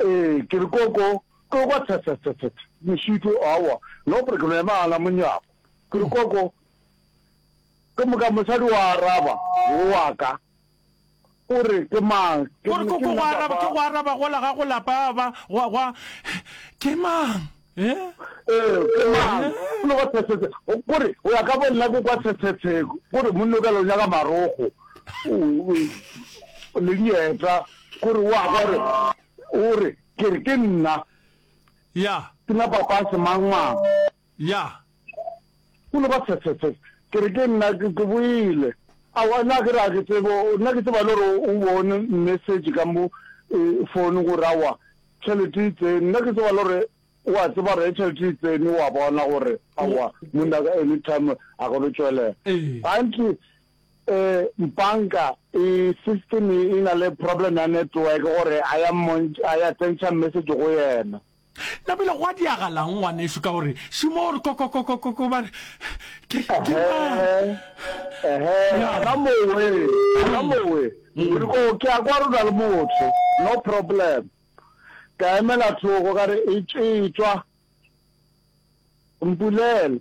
Ee, ke re, Koko, Koko, thethethethet, Mešito, aowa, no pre ke no ema gana monyako. Ke re, Koko, ke moka mosadi o araba, wo wa ka, o re, Ke mang? Ke re, Koko, go araba, ke go araba gola ga go lapa, ba, gwa, gwa, Ke mang? Ee, ke mang? O lego tshetsetse. Kore, o ya ka bo nna ko kwa tshetsetse. Kore, monno ka lonya ka marogo. Le dieta. Kore, o a gore, o re, ke re, ke nna. Ya. Ke na papa se mang mang. Ya. Go no ba tsetsetse, ke re ke nna, ke boele. Aowa, nna ke re a ke tsebe, nna ke tseba le gore o bone message ka mo phone gore aowa tšhelete e tsene, nna ke tseba le gore o a tseba gore ge tšhelete e tsene o a bona gore aowa monna ka anytime a ka no tšwelela. Gantši um banka e system e na le problem ya network gore a ya a ya tsentšha message go yena. Na bile gwa diragalang, ngwanešu, ka gore šimo o re kokokokokoko, ba re, Ke, ke mang? Ya. Ehe, ka mowe, ka mowe. O re, Oh, ke a kwa re na le motho. No problem. Ka emela thoko, ka re, E, etšwa, mpulele.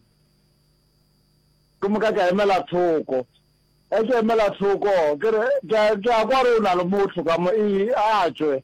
Gomme ka ka emela thoko. Ge ke emela thoko, ke re, Ke a, ke a kwa re o na le motho ka mo, e, a tšwe.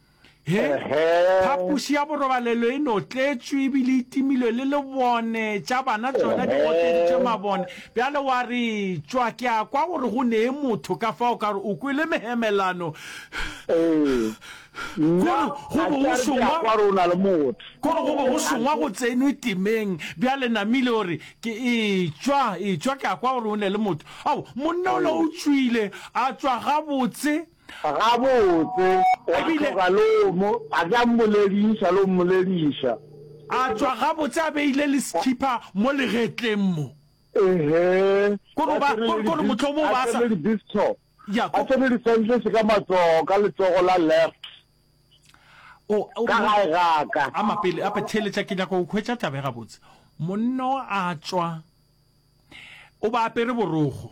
He, phapoši ya borobalelo e no tletšwe ebile e timilwe le lebone tša bana tšona di gotleditšwe mabone. Bjale wa re tšwa ke a kwa gore go nee motho ka fa o ka re o kwele mehemelano. Kore go bo go šongwa kore go bo go šongwa go tsenwe timeng. Bjale Namile o re ke e tšwa e tšwa ke a kwa gore go ne le motho. Ao, monna o la o tšwile a tšwa gabotse. Gabotse, wa tloga le o mo, a ke a mmolediša, le o mmolediša. A tšwa gabotse a beile le sekhipa mo legetleng mo. Ehe, Ko no ba, ko, ko no mohlomong ba sa. Ya, ko. A tsene di-sandals ka matsogo, ka letsogo la left, O, o. Ka gae ga ka. A mapele, a theeletša, ke nyaka go hwetša taba e gabotse. Monno a tšwa, o ba apere borogo.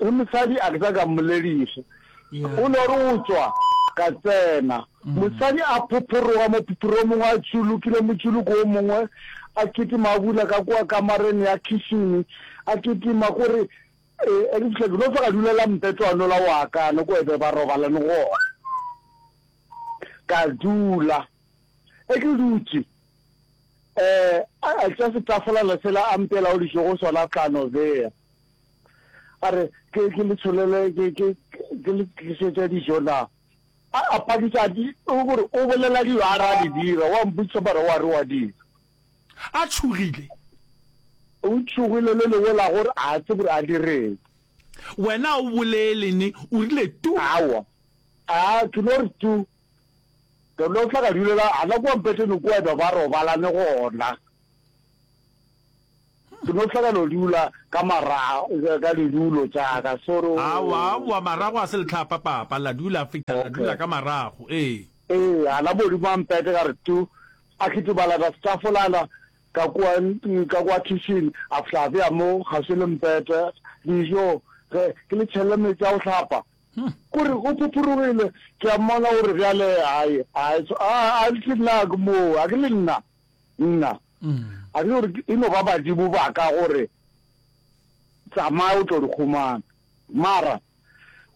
Re mosadi a ke sa ka mmolediša. O no re o tšwa, ka tsena. Mosadi a phophoroga mo phophromong a tšulukile motšuluko o mongwe, a kitima a bula ka kua kamareng ya khishini, a kitima ko re, E, e ke fihla ke no fega dula la mpetlwano la wa ka no ko ebe ba robalane gona. Ka dula. E ke dutše, eh, a tša setafolana sela a mpela o dišo go sona tlano beya. A re, Ke, ke le tsholele, ke, ke, ke le tlišetše dijo na? A, a phadiša, a di, o gore, o bolela dilo a re a di dira, wa mpotšiša mara wa re wa dira. A tšhogile. O tšhogile le lengwe la gore a tsebe gore a direng. Wena a o bolele ne, o rile tu. Aowa. A, ke no re tu. Ke no tla ka dulela gana kua mpeteng kua, e be ba robalane gona. Ke no hla ka no dula ka marago ka didulo tša ka soro. Aowa, aowa, marago ga se lehlapa, papa. La dula Afrika, la dula ka marago, ee. Ee, a la Modimo a mpete ka re tu, a kitibala ka setafolana ka kua, ka kua khishini, a fihla a bea mo kgauswi le mpete, dijo, ge ke le tšhelle meetse a go hlapa. Ko re o phophoregile, ke a mmona o re bjale, Ai, ai, a, a, a, ke nna, ke moo, a ke le nna. nna a re gore e no ba badimo ba ka gore tsamaya o tlo di kgomana mara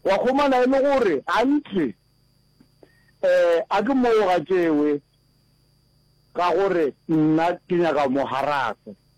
wa kgomana e le gore gantsi um eh, a ke moo ga tšewe ka gore nna ke nyaka mo haraka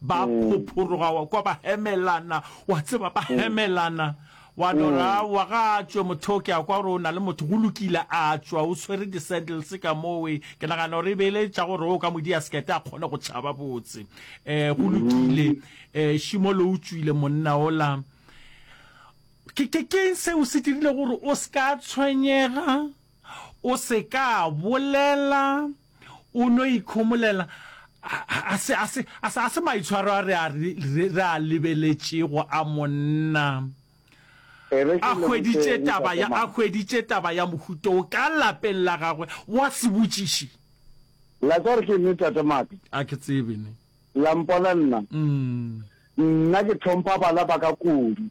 ba mm. phophoroga wa kwa ba hemelana wa tseba ba mm. hemelana wa dora mm. wa ga tswe motho ke a kwa gore o na le motho go lokile a tswa o tshwere di-sandals ka mowe ke nagana gore e beele tša gore o ka modi ya sekete a kgone go tšhaba botse um go lokile um šimo le o tswile monna ola ke keng seo se dirile gore o se ka tshwenyega O se ka bolela, o no ikhomolela, A se, a se, a se, a se maitshwaro a re a, re a lebeletšego a monna. A hweditše taba ya, a hweditše taba ya mohuta wo ka lapeng la gagwe. Wa se botšiše? La kwa gore ke eng, Tate Maaka? A ke tsebe, ne. La mpona nna? Nna ke hlompha bana ba ka kudu.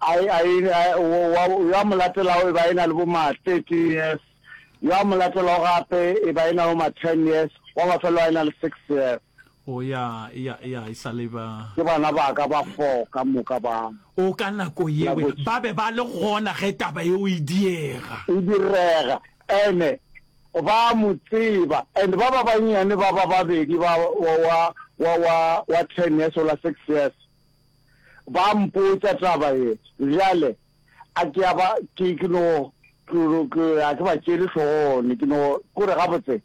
A e, a e, a e, wo, wa, yo a mo latelago e ba e na le bo ma thirteen years, yo a mo latelago gape e ba e na le bo ma ten years, wa mafelo a e na le six years. O ya, ya, ya, e sa le ba. Ke bana ba ka ba four ka moka ba. O ka nako yeo, Laboš. ba be ba le gona ge taba yeo e diega. E direga, ene ba a mo tseba, and ba ba bannyane ba ba babedi ba, wa, wa, wa, wa, wa ten years, o la six years, Ba mpotša taba ye, bjale a ke a ba, ke, ke no, ke, ke, a ke ba tšeele hlogone, ke no, ko re gabotse,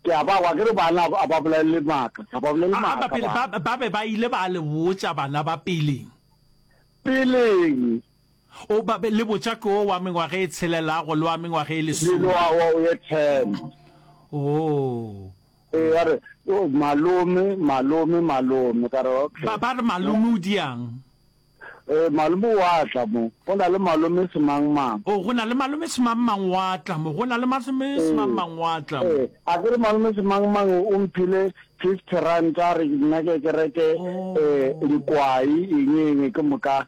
ke a ba kwa, ke re bana a ba bolelele maaka, ga ba bolele maaka bana. Ba, ba be ba ile ba le botša bana ba peleng. Peleng. O ba be le botšako wo wa mengwaga e tshelelago le wa mengwaga e lesome. Lilo a wa o ye ten. Oh. E ya re, oh, malome, malome, malome. Ka re, okay. Ba ba re malome o diang? E, malome wa tla mo. Go na le malome semang mang. Oh, go na le malome semang mang wa tla mo. Go na le malome semang mang wa tla mo. E, a ke re malome semang mang o mphile fifty rand a re nna ke ke reke e, likwai, eng, eng, ke moka.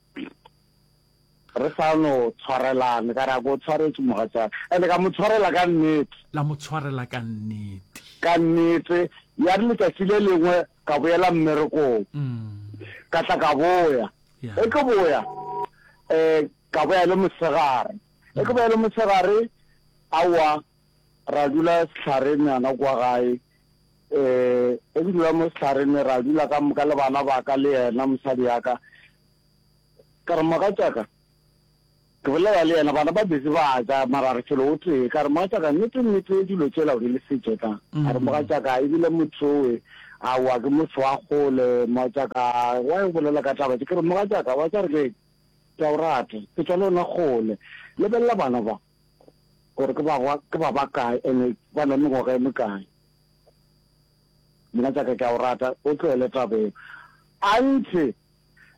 Re sa no tshwarelane, ka re a ko o tshwaretše mogatšaka. Ene ka mo tshwarela ka nnete. La mo tshwarela ka nnete. Ka nnete. Ya re letšatši le lengwe ka boela mmerekong. Ka tla ka boya. Ge ke boya, um ka boya le mosegare. Ge ke boya le mosegare, aowa. Ra dula sehlareng yana kwa gae. E, e re dula mo sehlareng ne ra dula ka moka le bana ba ka le yena mosadi ya ka. Ka re, Mogatšaka, ke bolela le yena, bana ba busy ba ja, mara re felo o tee. Ka re, Mogatšaka, nnete nnete dilo tšela o di le sitše ka? A re, Mogatšaka, e bile motho owe, aowa ke motho wa kgole, mogatšaka, wa e bolela ka taba tše. Ke re, Mogatšaka, wa tša re keng? Ke a o rata, ke tšwa le wena kgole. Lebelela bana ba. gore ke ba gwa ke ba ba kae ene ba na mengwaga e mekae mogatšaka ke a o rata o tlohele taba eo anthe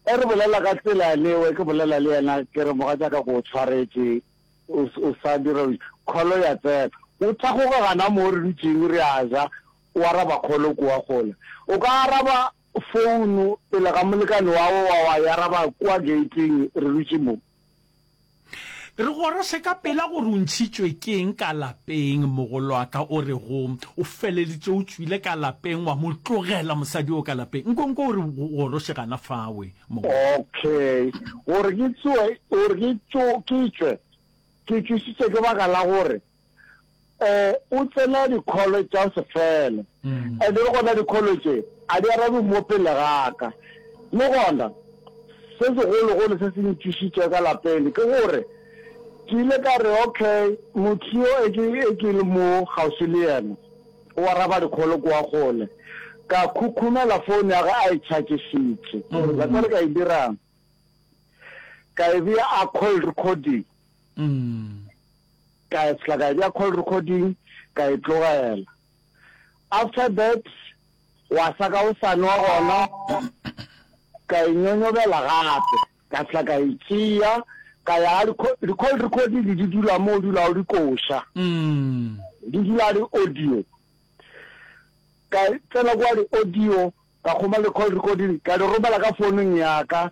e re bolela ka tsela lewe ke bolela le yena ke re mogatšaka ko o tshwaretše o sa dira kholo ya tsena o thagoga gana mo re dutšeng re a ja o araba kholo kua kgole o ka araba founu pele ga molekane wa wa wa e araba kua gating re dutše moo Re gorose ka pela gore o ntšhitšwe ke eng ka lapeng. Mogolwaka o re go, o feleletše o tšwile ka lapeng, wa mo tlogela mosadi o ka lapeng. Nkonko o re go gorose gana fawe, mogolwaka. Okay, gore ke tsoe, gore ke tšo, ke tšwe, ke tšwisitše ke baka la gore. um o tsena dikholo tša se fele and le gona dikholo tše a di arabe mo pele gaka le gona se segologolo se se ntšišitše ka lapele ke gore ke ile ka re okay motho yo e ke e ke le mo gaufi le yena o araba dikholo kwa gole ka khukhumela phone ya ga a e chargesitše la tsale ka e dirang ka e bea a call recording Ka fihla ka e bea call recording ka e tlogela. After that gwa sa ka go sa nwa gona ka e nyonyobela gape ka fihla ka e tšea ka ya di call recording di dula mo o dula o di koša. Di dula di audio. Ka tsena kwa di audio ka kgoma le call recording ka di romela ka founung ya ka.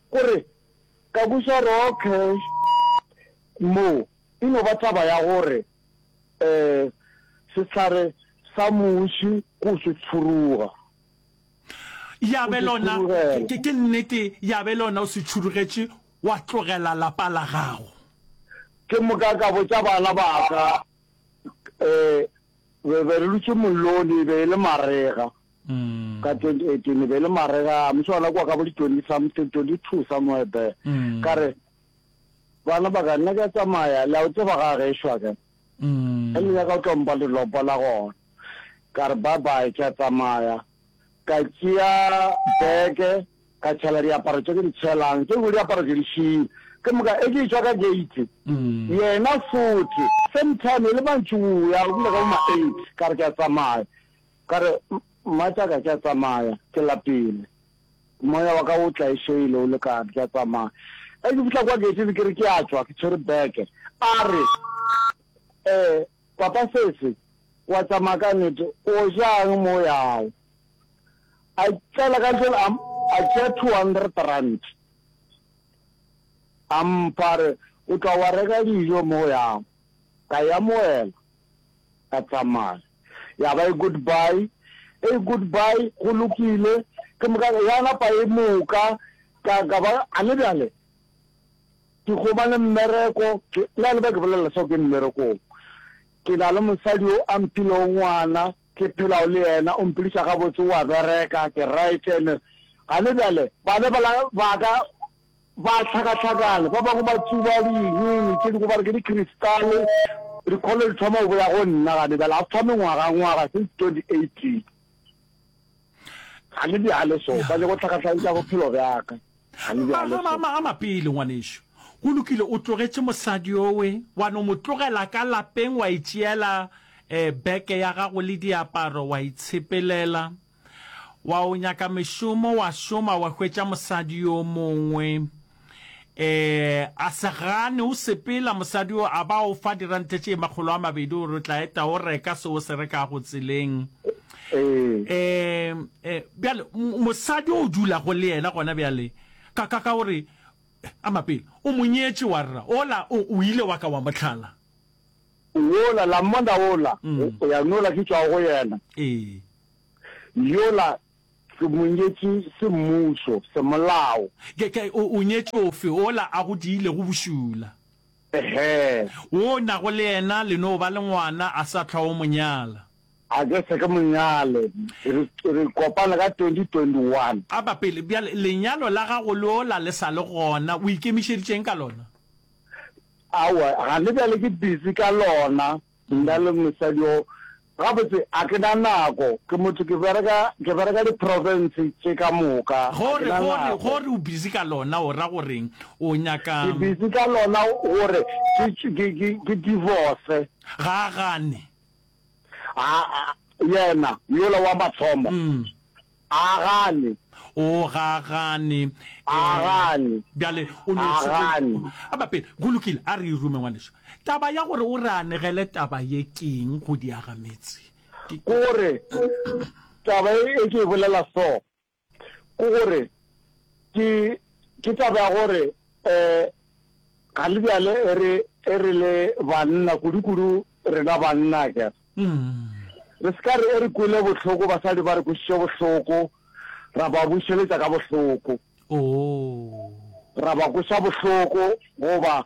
O re, Ka buša raw cash mo e no ba taba ya gore sehlare sa muši ko se tšhuruga. Ya be lona, ke nnete, ya be lona o se tšhurugetše wa tlogela lapa la gago. Ke moka ka botša bana ba ka. Re be re dutše mollong, e be e le marega ka twenty eighteen, e be e le marega a motho ona kwa ka bo di twenty something, twenty two somewhere there. Ka re, bana ba ka nna ka tsamaya, le a o tseba ga gešwa ka. Ge le nyaka o tlo mpa le lopa la gona. Ka re bye bye, ke a tsamaya. Ka tšea beke. Ka tšhela diaparo tše ke di tšhelang, tše dingwe diaparo ke di šile. Ke moka e ke e tšwa ka gate, yena fote same time e le mantšiboa go bile ka bo ma eight, ka re ke a tsamaya, ka re mmatšaka ke a tsamaya ke lapile, moya wa ka o tlaešeile o lekane ke a tsamaya. E ke fihla kwa gate-ing ke re ke a tšwa ke tshwere bag, a re um papa Sesi wa tsamaya ka nnete, o ja'ng mo o yago? a tsela ka jela a a tšea 200 rand a mpha re o tla wa reka dijo mo go yang ka ya moela ka tsamaya ya ba e goodbye e goodbye go lokile ke moka ya napa e moka ka ka ba a le bjale ke gobane mmereko ke la le ba ke bolela so ke mmerekong ke na le mosadi o a mphilego ngwana Ke phelago le yena, o mphediša gabotse, o a bereka, ke right. And gane bjale bana bala baka ba hlakahlakana, ba bangwe ba tsuba dinying tše dingwe ba re ke di-crystal-e. Dikholo di thoma go boya go nna gane bjale, after mengwagangwaga, since 2018. Gane bjale so, ba nyaka go hlakahlakantša bophelo bjaka. Magamama a mapele, ngwanešu. Go lokile, o tlogetše mosadi yowe, wa no mo tlogela ka lapeng, wa itšeela beke ya gago le diaparo, wa itshepelela. Wa o nyaka mešomo, wa šoma, wa hwetša mosadi yo mongwe. A se gane, o sepela, mosadi yo a ba o fa dirante tše makgolo a mabedi gore o tla eta o reka se o se rekago tseleng. ee um bjale mosadi o dulago le yena gona bjale ka ka ka gore a mapele o monyetše wa rra ola o ile wa ka wa motlhala wola la mmona ola mm. o ya nola ke tšwago go yena ee yola ke monyetše semmuso semolao o nyetše ofe ola a go diile go bošula ehe o nago le yena le no ba le ngwana a sa tlhwa o monyala A ke se ke mo nyale. Re, re kopane ka 2021. A ba pele, bjale lenyalo la gago lo la le sa le gona, o ikemišeditše'ng ka lona? Aowa, gane bjale ke busy ka lona, nna le mosadi o. Gabotse, a ke na nako, ke motho, ke bereka, ke bereka di-province tše ka moka, a Go ke re, na go re, go nako. re o busy ka lona o ra goreng? O nyaka. Ke busy ka lona gore ke, ke, ke, ke divorce. Ga a gane. A, a, yena, yola wa mathomo, a gane. O, ga a gane. A Ee. gane. Bjale, o no A se go- gane. A ba pele. Go lokile, a re e rume, ngwanešu. Taba ya gore o re anegele taba ye ke eng go diagametse? Ke- Ko re, taba e e ke e bolela so, Ke gore ke ke taba ya gore eh ga le bjale e re e re le banna kudu kudu rena banna ke re se ka re e re kwele bohloko basadi ba re kwešiše bohloko ra ba bušeletša ka bohloko ra ba kweša bohloko goba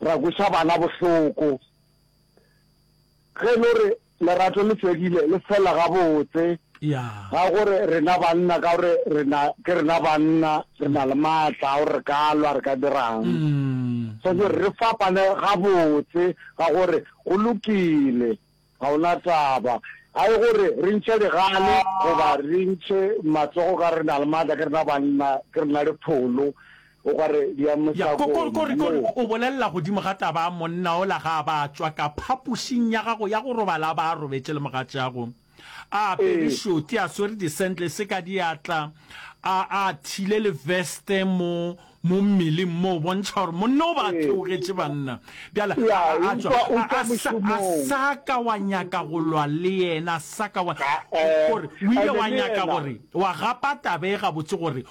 ra kweša bana bohloko ge e le gore Lerato le fedile, le fela gabotse. Ga gore rena banna ka gore rena ke rena banna re na le maatla a gore re ka lwa re ka dirang. So ke re fapane gabotse ga gore go lokile ga ona taba. A e gore re ntšhe digale goba re ntšhe matsogo ka gore re na le maatla ke rena banna ke rena dipholo O ka re di a Ya, ko, ko, ko re, ko re, mosakong, o bolelela godimo ga taba ya monna ola ga a ba a tšwa ka phapošing ya gago ya go robala a ba a robetše le mogatšeago, a apere Ee. šoti, a swere di-sandless ka diatla, a, a thile le veste mo, mo mmeleng mo, bontšha gore monna o ba a Ee. theogetše, banna. Bjale, Ya, a, a, a tšwa, utlwa, a, utlwa a sa, a mošomong. sa ka wa nyaka go lwa le yena, a sa ka wa, Ga-e. ko re, o ile Ene wa le nyaka yena. gore, wa gapa taba e gabotse gore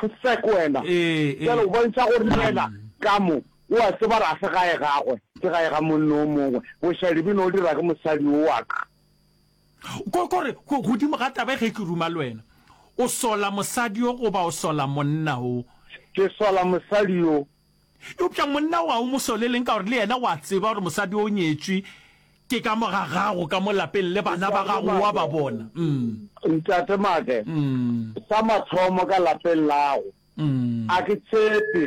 Go se ko wena. Bjale o bontšha gore le yena ka mo o a tseba gore ga se gae gagwe, ke gae ga monno o mongwe. Bošali bo no dira ke mosadi o wa ka. Ko, ko re, go, godimo ga taba e ge ke ruma le wena. O sola mosadi yo goba o sola monna wo? Ke sola mosadi yo. Eupša monna wa o mo soleleng ka gore le yena o a tseba gore mosadi o nyetšwe ke ka mo ga gago ka mo lapeng le bana ba gago o a ba bona. Umm. Ntate Make, sa mathomo ka lapeng lago a ke tshepe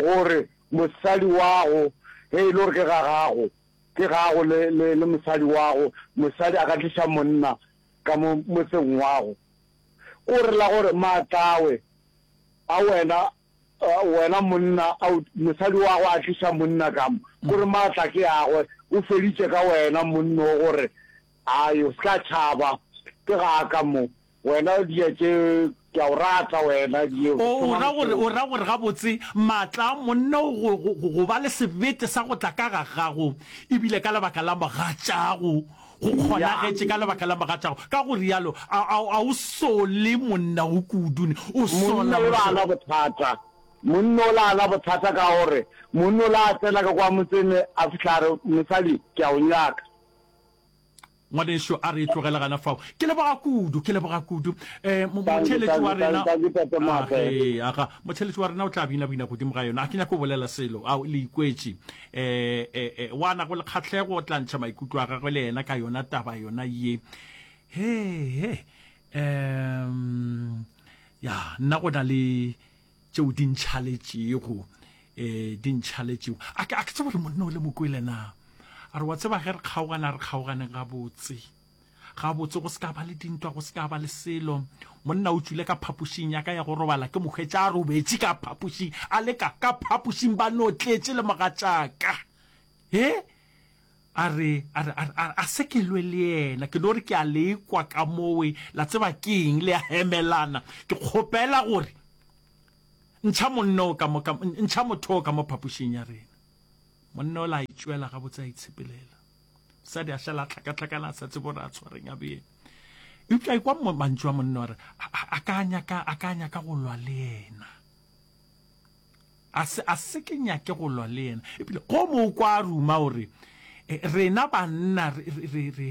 gore mosadi wago ge e le gore ke ga gago ke gago le le mosadi wago mosadi a ka tliša monna ka mo motseng wago ko re la gore maatlawe a wena Wena monna a o mosadi wa go a tliša monna kamo gore maatla ke agwe o feditše ka wena monna o gore a yo ska tšhaba ke ga ka mo wena dia tše ke a o rata wena dio o ra gore o ra gore ga botse maatla a monna o go go ba le sebete sa go tla ka ga gago e bile ka lebaka la mogatšago Go kgonagetše ka lebaka la mogatšago. Ka go realo, a, a, a o sole monna wo kudu ne? O sola Monna ola a na mošola. bothata. Monna ola a na bothata ka gore monna ola a tsena ka kwa motseng ne a fihla a re, Mosadi, ke a o nyaka. Ngwanešu, a re e tlogele gana fao. Ke leboga kudu, ke leboga kudu. E, mo, Thank you, motheeletši thank wa you, thank you, rena. thank you, Tate Maaka. Age, aga, motheeletši wa rena o tla bina-bina godimo ga yona. Ga ke nyake go bolela selo. Ao, le ikwetše. E, e, e, o a nago le kgatlhego o tla ntšha maikutlo a gagwe le yena ka yona taba yona ye he he um ya nna go na le tšeo di ntšhaletšego um di ntšhaletšego a ke tsebo gore monna o le mokwele na a re wa tseba ge re kgaogana re kgaoganeng gabotse gabotse go se ka ba le dintwa go se ka ba le selo monna o tswile ka phapošing ya ka ya go robala ke mokgwetša a robetše ka phapošing a leka ka phapošing ba no tletše le mogatšaka e a re a sekelwe le yena ke no re ke a lekwa ka mowe la tseba ke eng le ya hemelana ke kgopela gore ntšha monna o ka mo ntšha motho o ka mo phapošing ya rena monna o la itšwela gabotse a itshepelela sa di a šala tlakatlakana sa tsebo ra tshwareng a bee eupša e kwa mantšu a monna gore a ka nyaka a ka nyaka go lwa le yena a se a se ke nyake go lwa le yena ebile go mo kwa ruma gore e, rena banna re re re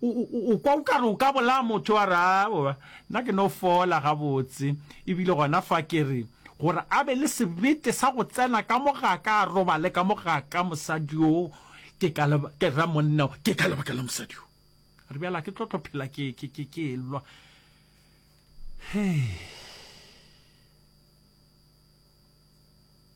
O, o, o, o kwa o ka re o ka bolaya motho, wa re, Aowa, nna ke no fola gabotse. E bile gona fa ke re, gore a be le sebete sa go tsena ka mo ga ka, a robale ka mo ga ka, mosadi yo, ke ka leba, ke ra monna yo, ke ka lebaka la mosadi yo. Re bjale a ke tlo tlo phela ke, ke, ke, ke elwa. Hei.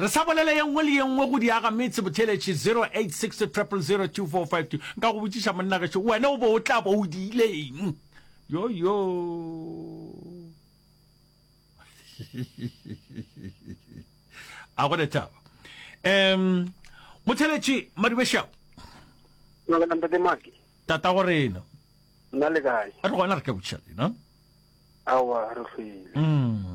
Re sa bolele ye nngwe le ye nngwe go di aga metse botheletši 0860002452. Nka go botšiša monna gešo, wena o bo o tla bo o di ileng? Yo yo. A go le taba. Em motheletši Madubešago. Nna ntate Maki. Tata go rena. Nna le kae? Re gona re ka botšiša lena. Awa re hlwile. Mm.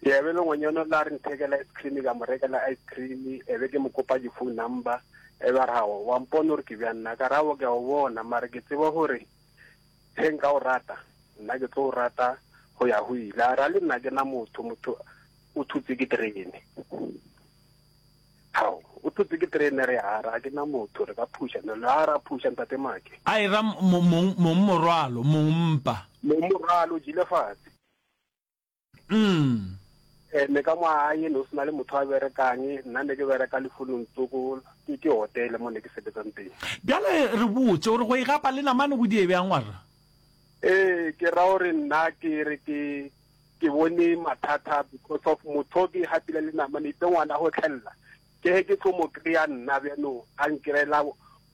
Ke be le ngwanyana o la re nthekela ice cream ka mo rekela ice cream e be ke mo kopa di-phone number e ba ra go wa mpone gore ke bja nna ka rabo ke a o bona mare ke tseba gore ge nka o rata nna ke tlo o rata go ya go ile a ra le nna ke na motho motho o thutse ke terene ao o thutse ke terene re a ra ke na motho re ka phuša ne le a ra phuša ntate make a e ra mong morwalo mong mpa mong morwalo jile fatshe mm. Eh, me ka moaye ne o sena le motho a berekang nna ne ke bereka lefonong tsoko ke ke hotele mo ne ke sebetsang teng bjale re botse gore go e gapa le namane go die bjang warra ee ke ra gore nna ke re ke ke bone mathata because of motho ke gapile le namane itse ngwana go tlhelela ke ge ke tlo mo kry-a nna bjanong a nkirela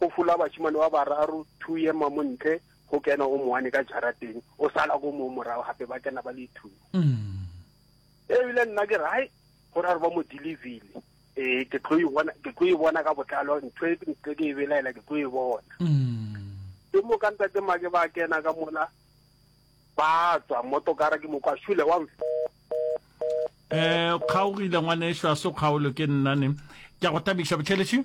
Go fola bašemane ba bararo, two ye ma mo ntle, go kena o moane ka jarateng, o sala ko mo morago gape, ba kena ba le two. Ebile nna ke re, hai, go ra re ba mo delivery, ee, ke tlo e bona, ke tlo e bona ka botlalo, ntho e ntle ke e belaela, ke tlo e bona. Ke mo ka ntate make ba kena ka mola, ba tswa motokara, ke mo kwa shule wa mfe. Eh, o kgaogile ngwaneso, a se o kgaolo, ke nna ne. Ke a go tabiša, Botšheletše.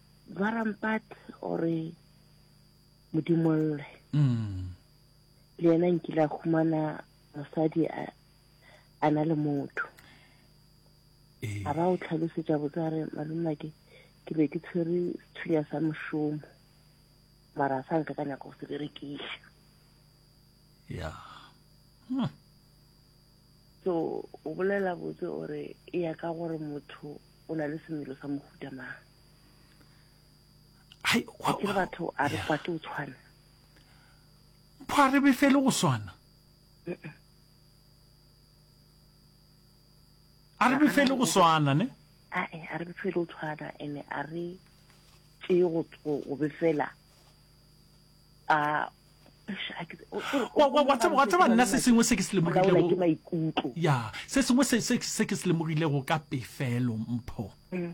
Ba rampat gore modimolle mm. le yena nkile a humana mosadi a na le motho eh. a ba o tlhalosetša botsare malomna ke ke be ke tshwere sethunya sa mošomo mara a sa nka ka nyako go se berekiša ya hmm. so o bolela botse gore e ya ka gore motho o na le semelo sa mohuta mang hai wa ke batho a re kwate o tshwana pho a re be fele go swana a re be fele go swana ne a e a re be fele o tshwana ene a re tse go go be fela a wa tseba nna se sengwe se ke se lemogilego ya se sengwe se ke se lemogilego ka pefelo mpho mm.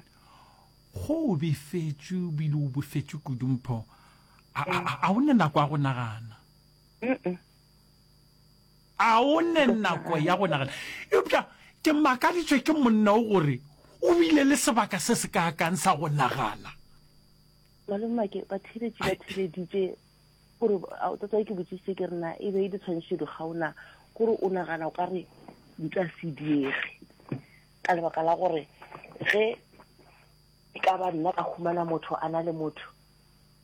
go o befetše o bile o bofetše kudu mpho a mm. o ne nako ya go nagana a o ne nako ya go nagana eupša ke makaditswe ke monna o gore o bile le sebaka se se kaakang sa go nagana Malome Make, batheeletši ba theeleditše gore tatae ke botsise ke rena e be e ditshwantsho di gaona gore o nagana o ka re di tla se diege ka lebaka la gore ge e ka ba nna ka humana motho a na le motho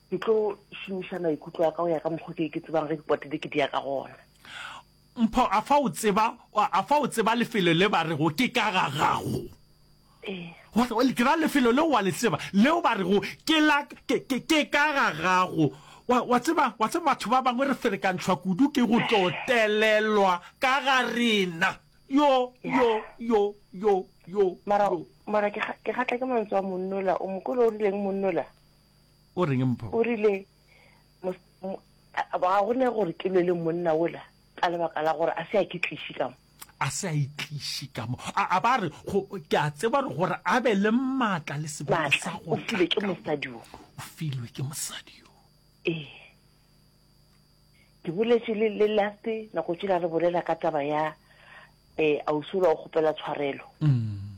ke tlo šomiša maikutlo a ka go ya ka mokgwa ke ke tsebang ge dipotele ke di ya ka gona Mpho, a fa o tseba, a fa o tseba lefelo le ba rego ke ka ga gago? Ee. Ke ra lefelo leo wa le tseba, leo ba rego ke la, ke, ke, ke ka ga gago. Wa, wa tseba, wa tseba batho ba bangwe re ferekantšhwa kudu ke go tlo telelwa ka ga rena. Yo, yo, yo, yo, yo, Mara, yo. mara ke ga, ke gatla ke mantswe a monna ola. O mo kwele o rileng monna ola? O reng Mpho? O rile, ga go ne gore ke lwe le monna ola ka lebaka la gore a se a ke tliši ka mo a se a itliši ka mo a ba re ke a tseba re gore a be le maatla le sebaka sa go filwe ke mosadi o filwe ke mosadi yo ee ke boletše le le last nako tšela re bolela ka taba ya eh ausi o la o kgopela tshwarelo mm.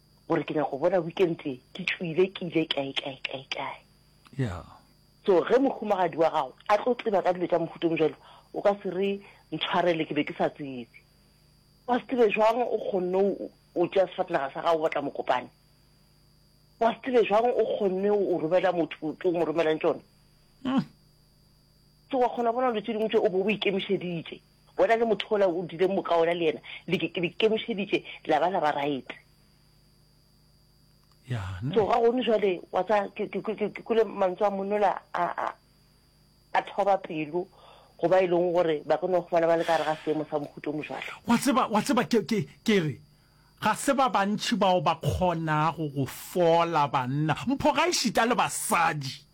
gore ke nyaka go bona weekend e ke tšwile ke ile kae kae kae kae yeah so ge mohumagadi wa gago a tlo tseba ka dilo tša mohuto mojalo o ka se re ntshwarele ke be ke sa tsebe wa se tsebe jwang o kgonne o tšea sefatanaga sa gago o batla mokopane wa se tsebe jwang o kgonne o romela motho o mo romelang tsone hmm. so wa kgona bona dilo tse dingwe tse o bo o ikemišeditše Bona le motho ola o dile moka ona le yena le ke le kemišeditše la ba la ba right. Ya ne. Tsoga gone jwale wa tsa ke ke ke ke kule mantswe a monola a a a thoba pelo go ba e leng gore ba ka no fumana ba le ka re ga seemo sa mohuto mo jwalo. Wa tseba wa tseba ke ke ke re ga se ba bantši bao ba kgonago go fola banna mpho ga e šita le basadi.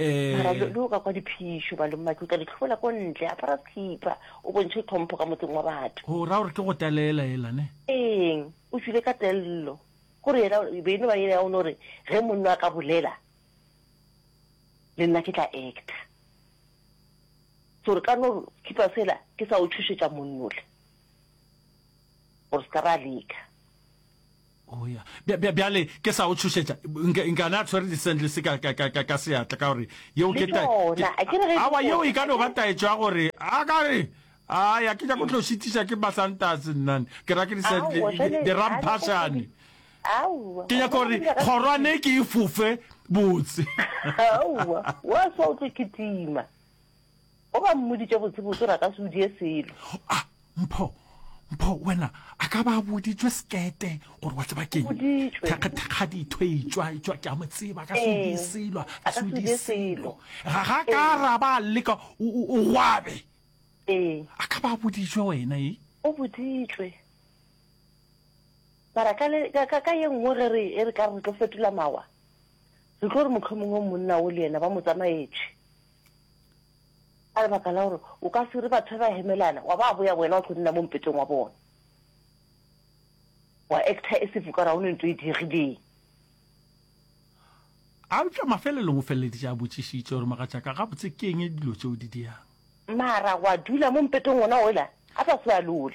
Mara le o ka kwa diphišo, balommatlotla, le tlhobola ko ntle, apara sekhipha, o bontšhe tlhompho ka motseng wa batho. Go ra gore ke go talelela ela, ne? Eng, o tšwile ka tello. Gore yena, e be e no ba yela ya go no re, ge monna a ka bolela, le nna ke tla actor. So re ka no khipa sela ke sa o tšhošetša monnole, gore se ka ba leka. Oh, ya. Bjale, ke sa o tšhošetša, nka na tshwere di-sandles ka, ka, ka, ka, ka seatla, ka gore, yeo ke ta... Awa, yeo e ka no ba taetšo ya gore, a ka re, a ya ke ja go tlo šitiša ke basantase nnane, ke ra ke di-ramphašane. Ke nyaka gore kgorwane ke e fofe botse. Aowa, wa swa o tlo kitima. Go ba mmoditše botsebotse gore a ka se o die selo. A, Mpho, Mpho, wena, a ka ba a boditšwe sekete gore wa tseba keng? Thekgathekgaditho etšwa, etšwa ke a mo tseba, a ka se o die selo, a ka se o die selo. Ga ga ka araba a leka, o gwabe. A ka ba a boditšwe wena, e? O boditšwe. Mara ka le, ka, ka ye nngwe ge re, e re ka re tlo fetola mawa, re tlo re mohlomongwe monna o le yena ba mo tsamaetše. Ka lebaka la gore o ka se re batho ba hemelana, wa ba boya wena wa tlo nna mo mpetong wa bona. Wa actor e se vuka ra one ntho e diegileng. A eupša mafelelong o feleleditše a botšišitše gore, Mogatšaka, gabotse ke eng dilo tše o di diang? Mara wa dula mo mpetong wona ola, a sa se ba lole.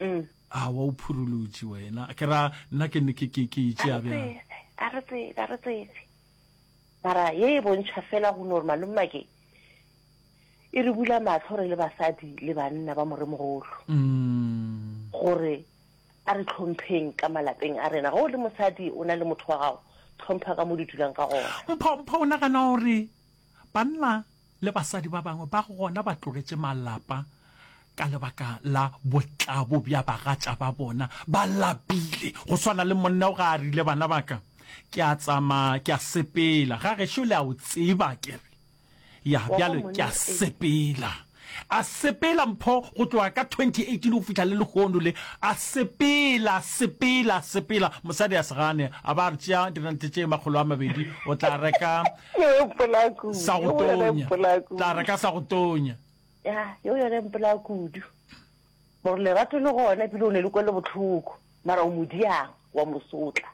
mm. a wa o phurulutše wena ke ra nna ke ne ke ke ke itše a bjang a re tsebe a re tsebe mara ye e bontšha fela go no re malomma ke e re bula matlho re le basadi le banna ba moremogolo mm. gore a re tlhompheng ka malapeng a rena go le mosadi o na le motho wa gago tlhompha ka mo di dulang ka gona mpho mpho o nagana gore banna Le basadi ba bangwe ba gona ba tlogetše malapa ka lebaka la botlabo bja bagatša ba bona, ba lapile go swana le monna o ga a rile, Bana ba ka, ke a tsamaya, ke a sepela. Ga gešo le a o tseba, ke re. Ya, bjale ke a sepela. A sepela mpho go tloga ka 2018 go fihla le lehono le, a sepela, sepela, sepela. Mosadi a se gane, a ba re, Tšea dirente tše makgolo a mabedi, o tla reka sa go tonya tla re ka sa go tonya ya yo yone mpola kudu gore lerato le gona pele o ne le kwele botlhoko mara o modiang wa mosotla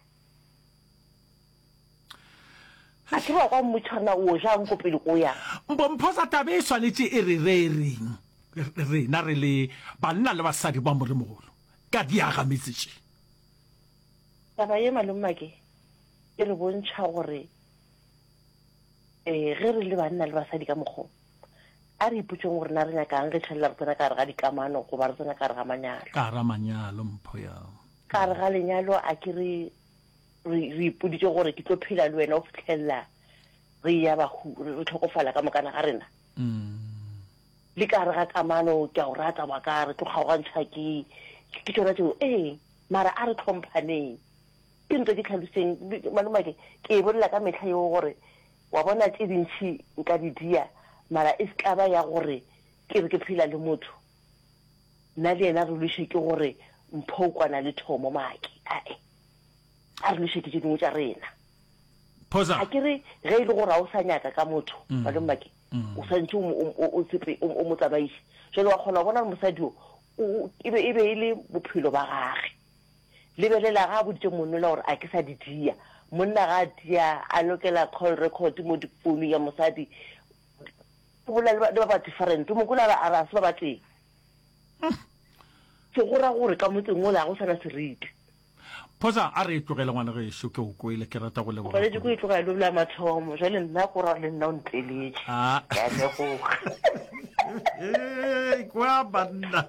a ke ba kwa mmotšhana o jang ko pele ko yang mpomphosa tabe e swanetše e re re reng rena re le banna le basadi ba moremogolo ka diaga metse tše taba ye malomake e re bontšha gore ee ge re le banna le basadi ka mokgwa a re ipotšeng gore na re nyakang re tšhelela re tsena ka gare ga dikamano goba re tsena ka gare ga manyalo ka gare manyalo mpho ya ka gare ga lenyalo a ke re re ipoditse gore ke tlo phela le wena o fitlhelela re ya bahu re tlhokofala ka mokana ga rena mm. le ka gare ga kamano ke a go rata wa ka re tlo kgaogantšha ke ke tsona tseo ee mara a re tlhomphaneng Ke ntwa ke tlhaloseng, maloma ke, ke e bolela ka mehla yeo gore, wa bona, tše dintši nka di dia, mara e se ka ba ya gore ke re ke phela le motho, nna le yena re lwiše ke gore Mpho o kwana le Thomo, Maki, ae, a re lwiše ke tše dingwe tša rena. Phosa. A ke re, ge e le gore ga o sa nyaka ka motho, malome Maki, o swantšhe o mo, o, o, o tsepe, o, o mo tsamaiše. Jwale wa kgona go bona gore mosadi wo, o, o, e be, e be e le bophelo ba gage. Lebelela, ga a boditše monnola gore a ke sa di dia. Monna ga a tia, a lokela call record mo di phone ya mosadi. O bolela le ba, le ba ba different. O mo kwela a re, a re a se ba ba tee. Se go ra gore ka motseng wola ga go sana seriti. Phosa, a re e tlogele ngwana gešo, ke go kwele, ke rata go leboga. O ganetše go e tlogela lo la mathomo. Jwale nna ko ra le nna o ntleletše. A. Ke a leboga. Ee, kwa banna.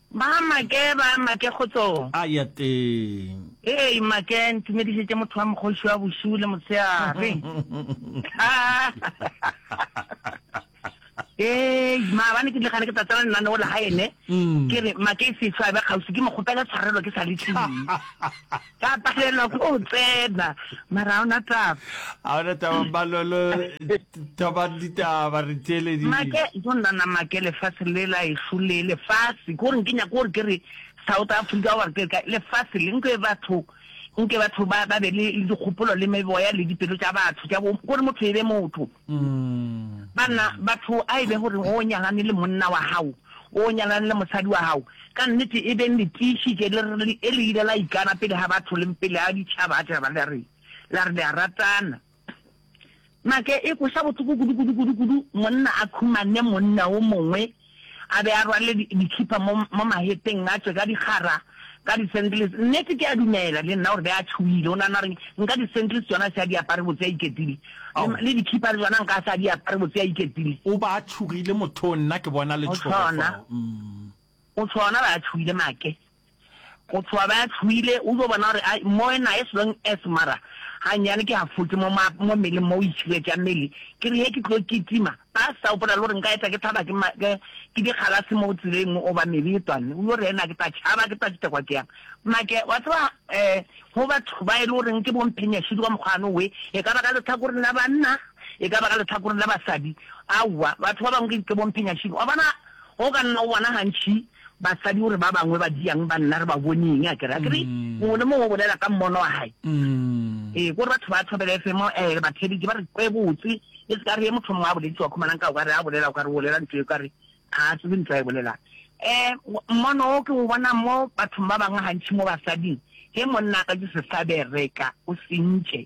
Ba make, ba make kgotsong. A ya teng. Hei make, ntumedišetše motho wa mokgoši wa bošuu le motshegare. Hei maabane ke dile gane ke tla tsena lenaneo la gae ne, ke re make e se tšhwabe kgauswi ke mo kgopele tshwarelo ke sa le tlile. Ka palelwa ke go tsena mara ga ona taba. Ga ona taba Mmalolo thomang ditaba re theeleditše. Make go nnana make lefase le la ešo le lefase ko reng ke nyaka gore ke re South Africa gore ke ka lefase le nke batho nke batho ba ba be le dikgopolo le meboya le dipelo tša batho tša bo gore motho e be motho. Banna, batho a e be gore o nyalane le monna wa gago, o nyalane le mosadi wa gago, ka nnete e beng le tiišitše le re le le ile la ikana pele ga batho le pele ga ditšhaba tša ba la re la re le a ratana. Make, e kweša bohloko kudu-kudu-kudu-kudu monna a khumane monna o mongwe. A be a rwale dikhipa mo, mo mahetleng, a tšwe ka dikgara, ka di-sandals. Nnete, ke a dumela le nna gore be a tšhoile. O nagana gore nka di-sandals tšona a se a di apare botse a iketile? Ao. Le, le dikhipa le tšona nka a se a di apare botse a iketile? O ba a tšhogile mothong, nna ke bona letšhogo fao. Umm. O tšhona, ba a tšhoile, Make. Go tšhoga be a tšhoile, o dio bona gore ai, moe naye selong es mara gannyane ke hafotse mo ma, mo mmeleng mo o itšhiretša mmele. Ke re he ke tlo kitima, ba sa gopola le gore nka etla ke thaba ke ma, ke, ke dikgalase mo tseleng goba mebe e tšwanne. O dio re, Na ke tla tšhaba, ke tla kitekwa ke yang? Make, wa tseba, eh, go batho ba e le goreng ke bomphenyashidi ka mokgwa ano we, e ka ba ka lehlakoreng la banna, e ka ba ka lehlakoreng la basadi, aowa, batho ba bangwe ke, ke bomphenyashidi. Wa bona, go ka nna go bona gantši, Basadi o re ba bangwe ba diang banna re ba bone eng a kere, a kere mongwe le mongwe o bolela ka mmono wa hae. Ee, ko re batho ba Thobela FM um ba theeditše ba re kwe botse, e se ka re ye motho mongwe a bolediše wa khumanang ka o ka re a bolela o ka re o bolela ntho e ka re ga a tsebe ntho a e bolelang. Um mmono o ke o bonang mo bathong ba bangwe gantši mo basading, ge monna a ka tšwe sehlabere ka o sentše.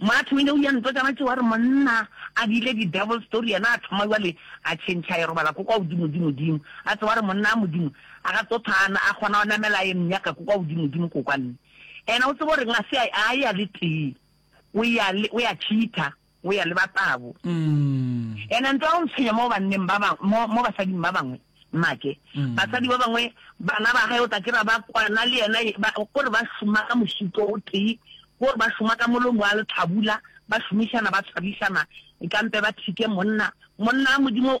Matho o ne o ya ntwa tša batšewa re monna a bile di devil story yena a thoma jwale a tšhentšha a e robala ko kwa godimodimodimo a tseba re monna a modimo a ga tso thana a kgona go namela a e mnyaka ko kwa godimodimo ko kwanne ena o tsebo reng a se a ya le tee o ya le o ya cheater o ya le ba tabo. And a ntwa o ntshwenya mo banneng ba ba mo mo basading ba bangwe. Make basadi ba bangwe bana ba gae o tla kira ba kwana le yena ba gore ba šoma ka mošito o tee gore ba šoma ka molomo wa letlhabula ba šomišana ba tshwarišana e kampe ba thike monna monna a modimo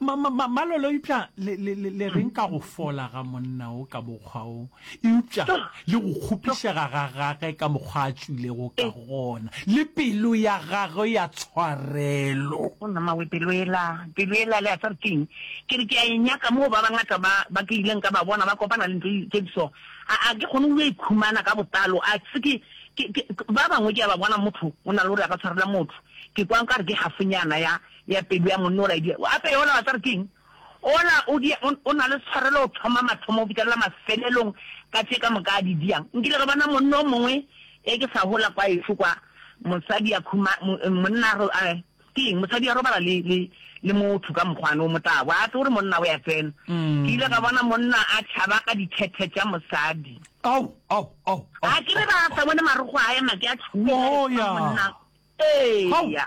Malolo, eupša le, le, le, le reng ka go fola ga monna wo ka mokgwa wo, eupša le go kgopišega ga gage ka mokgwa a tšwilego ka gona, le pelo ya gagwe ya tshwarelo? Gona, mmawe, pelo yela, pelo yela, le a tseba ke'ng? Ke re ke a e nyaka moo ba bangata ba, ba ke ileng ka ba bona ba kopana le ntho tše di so. A, a ke kgone go yo e khumana ka botlalo. A se ke, ke, ke, ba bangwe ke a ba bona motho o na le gore a ka tshwarela motho, ke kwa nkare ke hafonyana ya, ya pelo ya monna ola e dia. Gape yola wa tseba re keng? Ola o dia, o, o na le tshwarelo go thoma mathomo go fihlelela mafelelong ka tše ka moka a di diang. Nkile ka bona monna o mongwe ge ke sa hola kwa ešo kwa, mosadi a khuma, mo, monna a ro, a, ke eng, mosadi a robala le, le, le motho ka mokgwane o motabo, a tse gore monna o ya tsena. Ke ile ka bona monna a tšhaba ka dithethe tša mosadi. Ao, ao, ao, ao, A ke re ao, ba sa ao. bone marogo a ema ke a tšhomiša Oh, ya. monna. Ao, Eya.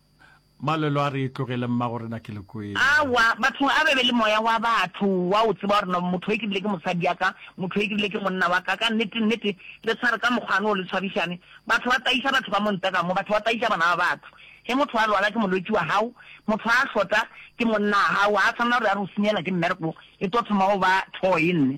Malwelo a re tlogele mmagorena ke le kwele. Aowa, bathong a be be le moya wa batho, wa o tseba gore no, motho e ke bile ke mosadi ya ka, motho e ke bile ke monna wa ka, ka nnete, nnete, le tshware ka mokgwane o, le tshwarišane, batho ba tayiša batho ba mo ntle ka mo, batho ba tayiša bana ba batho, ge motho a lwala ke molwetši wa gago, motho a hlota ke monna wa gago, ga a tshwanela gore a re o senyela ke mmereko, e tlo thoma go ba thoe, nne.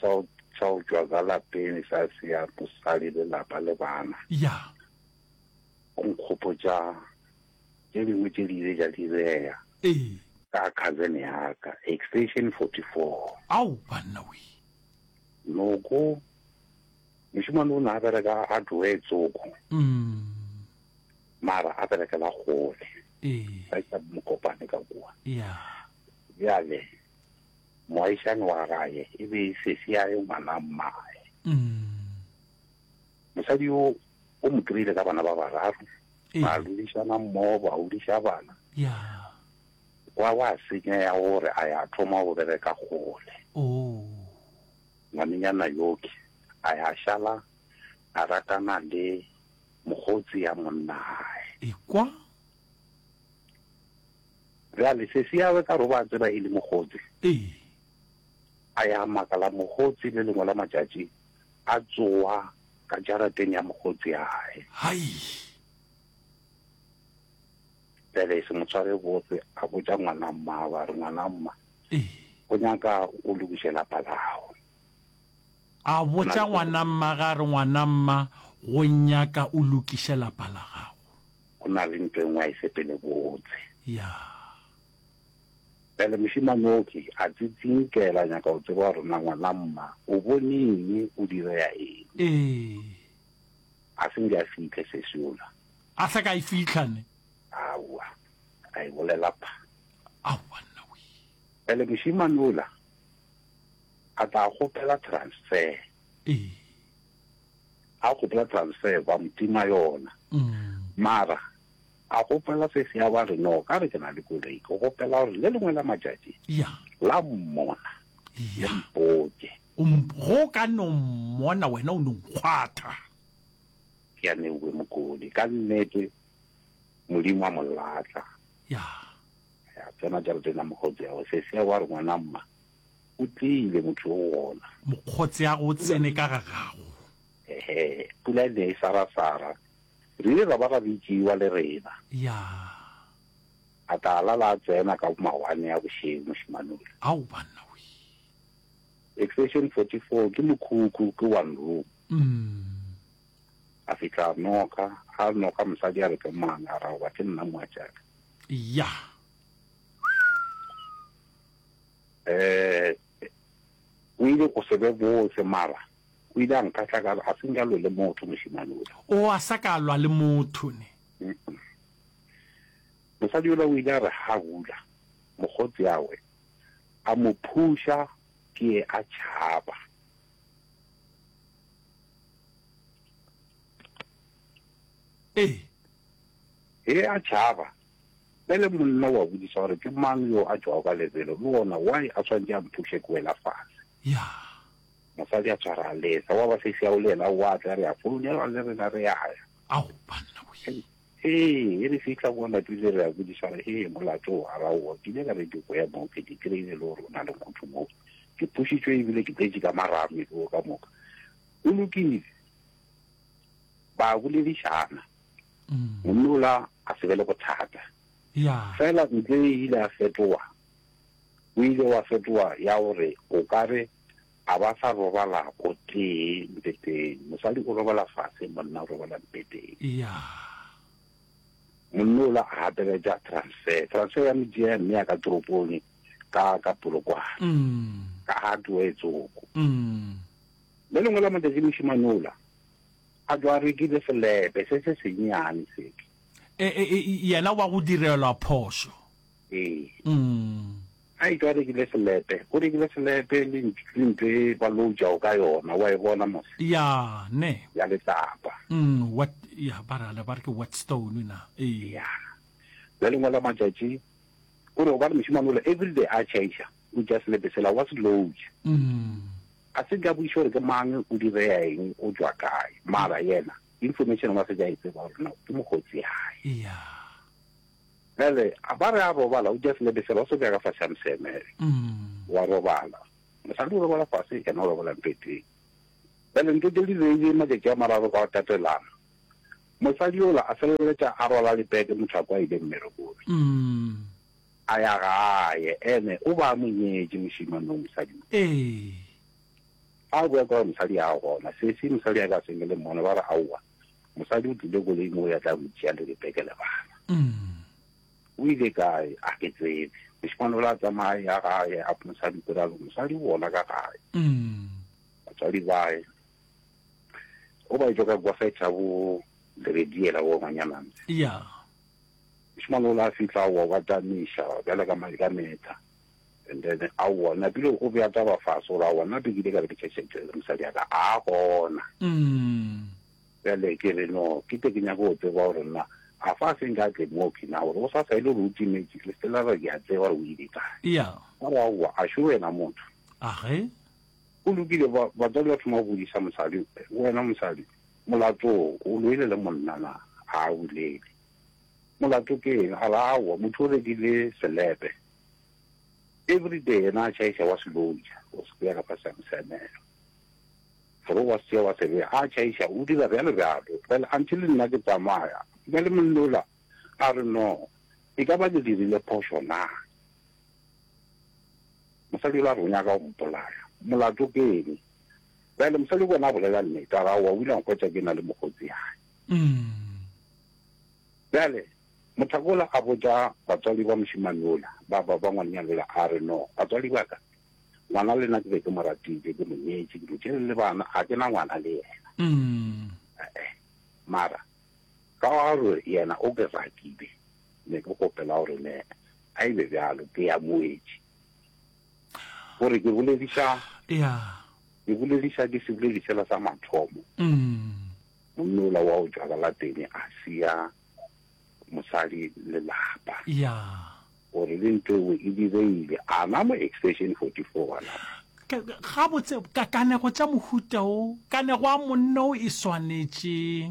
Sa go, sa go tšwa ka lapeng sa sea mosadi, lelapa le bana. Ya. Go nkgopotša tše dingwe tše di ile tša direga. Ee. Ka cousin ya ka, extension 44. Ao, banna we! Noko, mošemane o ne a bereka a tloge tsoko. Umm. Mara a berekela kgole. Ee. Ba isa mokopane ka kua. Ya. Bjale. Moagišani wa gae e be e sesi ya ge ngwana mmae. Mosadi yo o mo kry-ile ka bana ba bararo, Ee. ba rurišana mmogo, ba hodiša bana. ya Kwa wa senya ya gore a ya thoma go bereka kgole. o Ngwanenyana yoke a ya šala a ratana le mokgotsi ya monnae. ekwa Bjale, sesi ya gagwe ka gore o be a tseba e le mokgotse, Ee. a ya makala mokgotse le lengwe la matšatši a tsowa ka jarateng ya mokgotse ya gage. Hai! Bjale se mo tshware botse, a botša ngwana mmago a re, Ngwana mma, Ee. go nyaka o lokiše lapa la gago. A botša ngwana mma ge a re, Ngwana mma, go nyaka o lokiše lapa la gago. Go na le ntho e nngwe a e sepelebotse. Ya. Bjale mošemanoki a tsitsinkela, a nyaka go tseba gore na ngwana mma o bone eng, o direga eng. Ee. A se nke a fihle sesi yola. A se ka e fihla ne. Aowa, a e bolela pha. Aowa nna wee. Bjale mošemane yola A tla kgopela transfer. Ee. A kgopela transfer ba mo tima yona. Mara a kgopela se se ya ba re no ka re ke na le koloi ke kgopela gore le lengwe la matšatši la mmona le mpoke go ka no mmona wena o no nkgwatha ke a newe mokodi ka nnete modimo a molatla ya ya tsena jarateng ya mokgotseago seseago a re ngwana mma o tlile motho o gona mokgotseago o tsene ka ga gago ehe pula e ne e sarasara re ile ra ba ra bitšiwa le rena ya a tla lala a tsena ka mawane a bošeng mošimanole ao banna we extension 44 ke mokhukhu ke one room mm. a fitlha a noka a noka mosadi a re ke mang a ra goba ke nna moatšaka ya eh o ile go se be botse mara o ile a nkatla ka a seng jalo le motho moshimane o o a sa ka lwa le motho ne mosadi yola o ile a re ha hula mogotsi awe a mo phusha ke a tšhaba ee Ge a tšhaba, bjale monna o a bodiša gore ke mang yo a tšwago ka lebelo, le gona why a swanetše a mphuše ke wela fase. Ya. Mosadi a tshwara a lesa, gwa ba sesi ao le yena o a tla, re a founelwa le rena re a ya. Ao, banna wee! Hee, ge re fihla kwa lapeng le re a bodiša gore, hee, molato o araowa, ke ile ka re ke boya moo, ke di kry-ile e le gore o na le motho moo, ke phušitšwe e bile ke tletše ka marame, ke o ka moka. Go lokile. ba boledišana monna ola a se be le bothata fela ntle e ile a fetoa o ile wa fetoa ya gore o ka re a ba sa robala go tee mpeteng mosadi o robala fase monna o robala mpeteng monna ola a gapeletša transfer transfer ya mojea mme ya ka toropong ka ka polokwane ka ga tloetsoko Le lengwe la matšatši mošemane ola a tšwa a rekile selepe se se sennyane seke. Yena wa go direlwa phošo. Ee. A etšwa a rekile selepe, o rekile selepe le ntho e ba loutšago ka yona, wa e bona mose? Ya, ne. Ya letlapa. What, ya, ba rala ba re ke wet stone na? Ee. Ya. Le lengwe la matšatši o re gobane mošemane ola everyday a change-a, o tšea selepe sela wa se loutša. Ga se ka boiša gore ke mang, o direa eng, o tšwa kae. Mara yena, information wa se ka e tseba gore no ke mokgotsi yae. Eya. Bjale, a ba re a robala, o just lebesela, o se ka ka fa Samseme. Wa robala. Mosadi o robala fase, yena o robala mpeteng. Bjale ntho tše di reile matšatši a mararo ka go tatelana. Mosadi yola a feleletša a rwala lebeke, motho a kwa a ile mmerekong. a ya gae, ene o ba a mo nyetše mošemane wo mosadi wo. Ee. A a boa ka gore mosadi a gona, sesi mosadi a be a senge le mmone, ba re, Aowa, mosadi o tlile koloi mo o ya tla go itšea le Rebeke le bana. Mm. O ile kae? A ke tsebe. Mošemane o la tsamaya ya gae, a mosadi pele a re, Mosadi o bona ka gae. Mm. Batswadi bae. O ba etšwa ka kwa fetha bo Lerediela wo ngwanyananse. Yeah. Mošemane o la fihla aowa wa tamiša bjale ka madi ka meetla and then aowa napile o bea taba fase gore aowa nna be ke ile ka be ke tšhetšhetše le mosadi ya ka a gona bjale ke re no ke te ke nyaka go tseba gore nna a fa se nka tle mo ke na gore o sa sa ile gore o time ke le stela re ke a tseba gore o ile kae ya gore aowa a šo wena motho a ge Go lokile, ba, batswadi ba thoma go bodisa mosadi, Wena mosadi, molato wo, o loile le monna na? A a bolele. Molato ke eng? A re, Aowa, motho o rekile selepe. Everyday yena a tšhaiša wa se loja, o se beya ka fase ga moseamelo. A re, O a se tšea wa se beya. A tšhaiša, o dira bjalo bjalo. Bjale, until nna ke tsamaya. Bjale monna ola a re, No, e ka ba ke dirile phošo na? Mosadi o la re o nyaka go mpolaya. Molato ke eng? Bjale, mosadi ke ona a bolela nnete, a ra, o a wila nkhwetša ke na le mokgotsi yae. Bjale, mothaka ola a botša batswadi ba mošemane ola, ba, ba, ba ngwanenyana ola, a re, No, batswadi ba ka, ngwana le nna ke be ke mo ratile, ke mo nyetše, ke mo tšere le bana, ga ke na ngwana le yena. E-e. Mara, ka gore yena o ke ratile, ne ke kgopela gore ne a e be bjalo ke ya moetši gore ke bolediša ke bolediša ke seboledišela sa mathomo mm. monnola wa o jwala la tene a sia mosadi le lapa gore le ntho eo e direile a na mo extension 44 wana gabotse kanego tša mohuta o kanego a monno e swanetše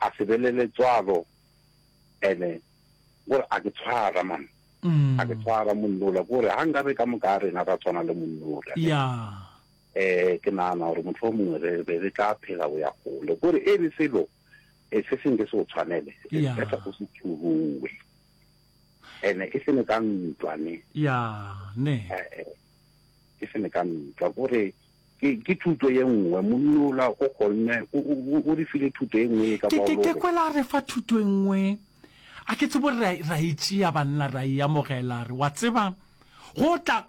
a se be le letswalo ene gore a ke tshwara man a ke tshwara monnola gore ga nka re ka moka a rena ra tshwana le monnola um ke nagana gore motho o mongwe re be re tla phela go ya gole gore e re selo e se senke se o tshwanele ka sa go se thuruwe ene e sene ka ntwa ne e sene ka ntwa gore Ke, ke thuto ye nngwe. Monna ola o kgonne, o, o, o, o re file thuto ye nngwe ye ka Ke, ke, ke Baolore. kwela a re fa thuto e nngwe. A ke tsebo re, ra e tšea, banna, ra e amogela. Re, wa tseba, go tla,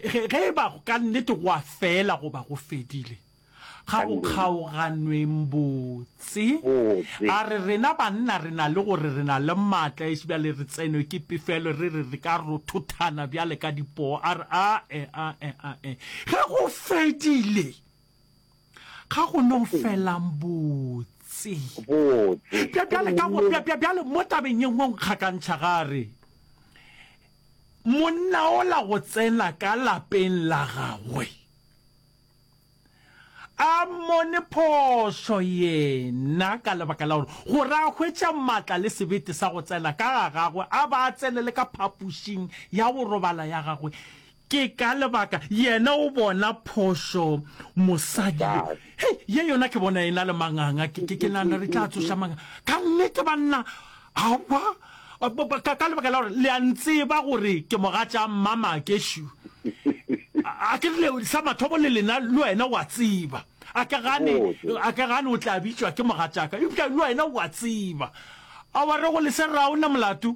ge, ge e ba ka nnete go a fela goba go fedile, ga go Kannete. kgaoganweng bo, Tse. A re rena banna re na le gore re na le maatla ešo bjale re tsenwe ke pefelo, re re re ka rothothana bjale ka dipoo. A re, A-e, a-e, a-e. Ge go fedile, ga go no felang botse. Botse. Bja, bjale ka go, bja, bja, bjale mo tabeng ye nngwe o nkgakantšha ge a re, Monna ola go tsena ka lapeng la gagwe. A mmone phošo yena ka lebaka la gore gore a hwetša matla le sebete sa go tsena ka ga gagwe a ba a tsenele ka phapošing ya go robala ya gagwe. Ke ka lebaka yena o bona phošo mosadi yo. Hei, ye yona ke bona e na le manganga. Ke nagana re tla tsoša manganga. Ka nnete, banna. Aowa, ka, ka lebaka la gore le a ntseba gore ke moga tša mmama keshu. A ke le sa mathomo le lena le wena wa tseba. A ke gane, a ke gane o tla bitšwa ke moga tšaka. Eupša le wena wa tseba. A wa re go le se raona molato?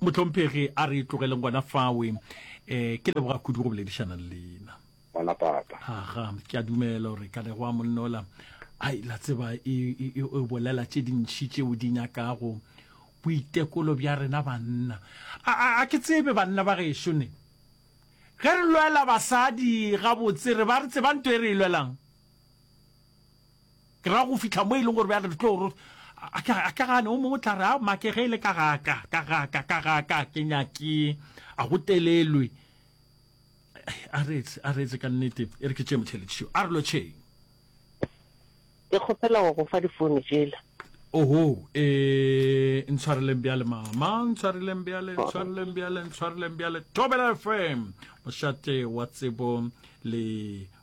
Mohlomphegi a re tlogeleng gona fawe. E, ke leboga kudu go boledišana le lena. Bona papa. Aga, ke a dumela gore ka lego a monnola. Ai, la tseba e, e, e, e bolela tše dintši tšeo di nyakago boitekolo bja rena banna. A, a, a ke tsebe banna ba gešo ne. Ge re lwela basadi gabotse re ba re tsebang nto e re e lwelang. Ke ra go fihla mo e leng gore bjale re tlo ro a ke a ke gane o mongwe o tla re a make ge e le ka ga ka ka ga ka ka ga ka ke nyake a go telelwe a re etse a re etse ka nnete e re ke tše motheletši yo a re lo tšheng ke kgopela go go fa difounu tsela oho e ntshwareleng bjale mama ntshwareleng bjale ntshwareleng bjale ntshwareleng bjale thobela fm mošate wa tsebo le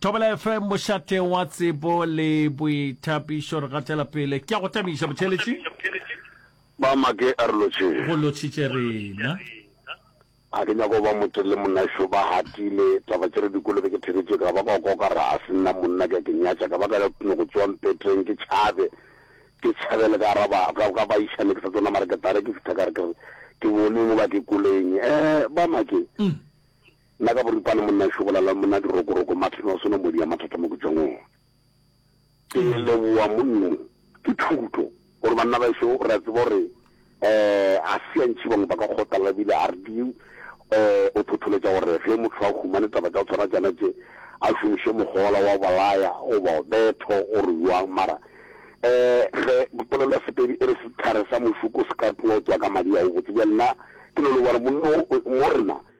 Thobela FM, mošate wa tsebo le boithapišo. Re gatela pele. Ke a go tamiša, botheletši. Ba make a re lotšhe. Go lotšhitše rena. Ga ke nyako ba mote le monaxo ba hatile taba tše re dikolobe ke theketše ka ba ka go koka ra a se nna monna ke a ke nyatša ka ba ka no go tsoa mpetreng ke tšhabe ke tšhabele ka araba ka ka ba išane ke sa tsona mara ke tare ke fitha ka re ke ke boneng ba ke koleng eh ba make mm. Nna ka boripana monna Shobolala le monna Dirokoroko Martin wa sona mo dia mathata mo ke tšwang ona. Ke leboa monno ke thuto gore banna ba šo ra tseba gore eh a se ntši bangwe ba ka kgotala bile a re di eh o thotholetša gore ge motho a humane taba tša tshwana tšana tše a šomiše mogola wa balaya goba o betho o re yoang mara eh ge dipolelo ya sepedi e re setlhare sa mošuko se ka tlotswa ka madi a o botse bja nna ke no le gore monno mo rena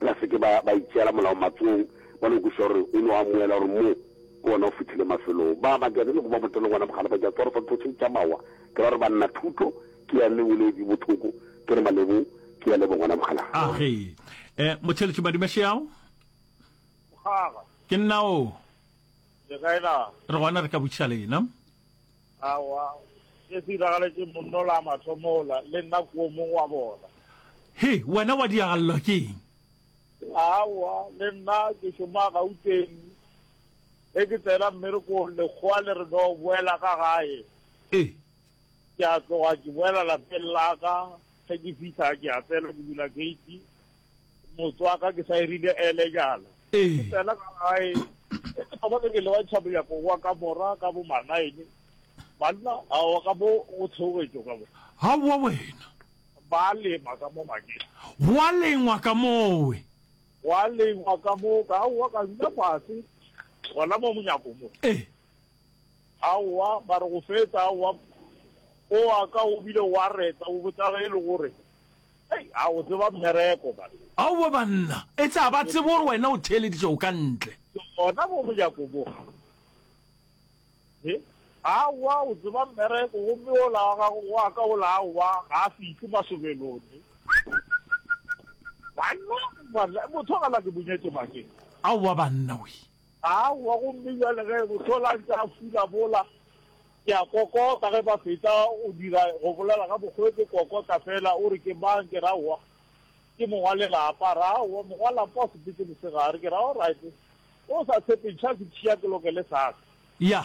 Ba se ke ba, ba itšeela Molao matsogong, ba no kwešiša gore o no amoela gore mo ke gona o fihlile mafelong. Ba ba ke atelego ba botelele gona bogale ba tša tswarofo thotšheng tša mawa, ke ra gore banna thuto, ke ya le boledi bothoko, ke re malebo, ke ya lebo gona bogala. Age, e, motheletši Madimašeago? Mogaga. Ke nna oo. Le kae na? Re gona re ka botšiša lena. Aowa, se se iragaletše monno la mathomo ola, le nna ko mong wa bona. He, wena wa diagalelwa ke eng? Aowa, le nna ke šoma Gauteng, ge ke tsena mmerekong lekgowa le re no boela ka gae. Ee. Ke a tloga ke boela lapeng la ka, ge ke fihla ke a tsena ke bula gate. Motswaka ke sa e rile ele jalo. Ke tsena ka gae, e ke thoma ke ke lewa tšhaboya ko wa ka mora ka bo manaine. Banna a wa ka bo go theogetšo ka bo. Ha wa wena. Ba lema ka mo makeng. Gwa lengwa ka mowe. Gwa lengwa ka mo ka wa ka nna fase. Gona mo monyako mo. Eh. A wa ba re go fetsa a wa o wa ka o bile wa reta o botsa ge e le gore Hei, a o tseba mmereko banna. Aowa banna, etse a ba tsebe gore wena o theeleditše o ka ntle. Gona bo monyako bo. He, aowa o tseba mmereko gomme wola wa gago wa ka wola aowa ga a fihle masobelone. Banna, banna, motho a gala ke bonyetše bakeng. Aowa banna, wee. Aowa, gomme bjale ge Motheo la ntše a fula mola, ke a kokota ge ba fetša go dira, go bolela ka mokgwe ke kokota feela, o re, Ke mang? Ke re, Aowa, ke mong wa lelapa. A re, Aowa, mong wa lapa wa sebete mosegare. Ke re, Alright, ge o sa tshepe ntšha sethi ya kelokele sa ka. Ya.